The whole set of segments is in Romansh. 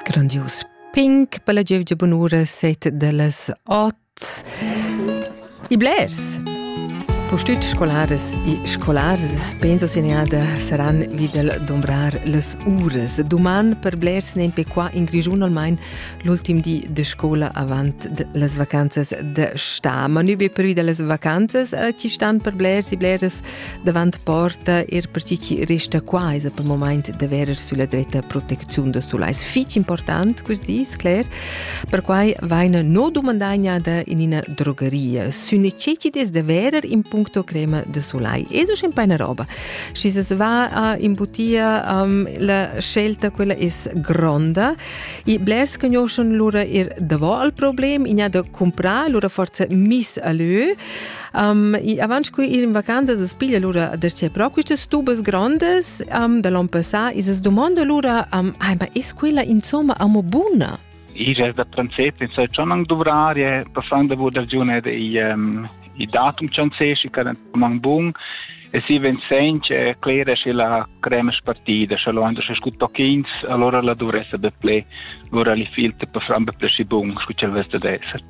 Grandius pink per la gievgia bunura set dellas ot. I blers. Postüt scolaras e scolars penso segnada saran vi del dombrar las uras. Duman per blers nempe qua in Grigiun almain l'ultim di de scola avant de las vacanzas de sta. Ma nübe per vi de las vacanzas eh, chi stan per blers e bleras Davant porta er per chi chi resta qua esa per moment da verer sulla dretta protecziun da sulais fich important quist dis, Claire. Perquai vaina no dumandagnada in ina drogeria sü necessities da verer in puncto crema da sulai. Eso schon paina roba. Schi se va a imbutia um, la scelta quella es gronda e blers conoscen lura er davo al problem, in ha da comprar, lura forza miss a lö. Um, avanti qui in vacanzas es piglia lura da sia pro quistas tubas grandes um, da l'on passà e se domanda lura um, ai ma es quella insomma amo buna Ira da princip in sai schon ang dovrar je passang da wurde giune de i um, i datum chanzesci kan mang bun e si ven senche clera sche la crema spartida sche lo ando se scut pochins allora la dovresse be ple ora li filte per fram be ple bun scu cel veste de esser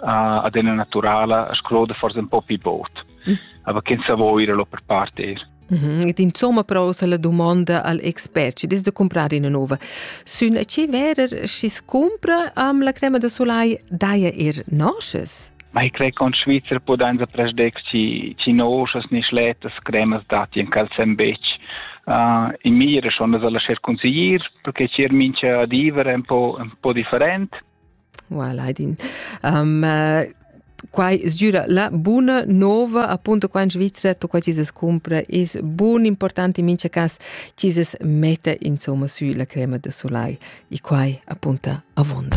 ad ena naturala a scroda forse un po' più bot. Mm. Aber che sa voi ira lo per partir. Mm -hmm. Et insomma prosa la domanda al expert ci des de comprare una nuova. Sün ce verer si scumpra am la crema de solai daia ir nosces? Ma ich crei con Schweizer podanza presdex ci ci nosces ni schletas cremas dati in calcem bec. Uh, in mira schon das alla cer consiglier perché ci er mincha divere un po un po different. Voilà, din. Um, uh, quai sgüra la buna nova appunto qua in Svizzera tu qua ci se scumpra is bun important in mincha cas ci se metta insomma sü la crema de soleil e quai appunta avonda.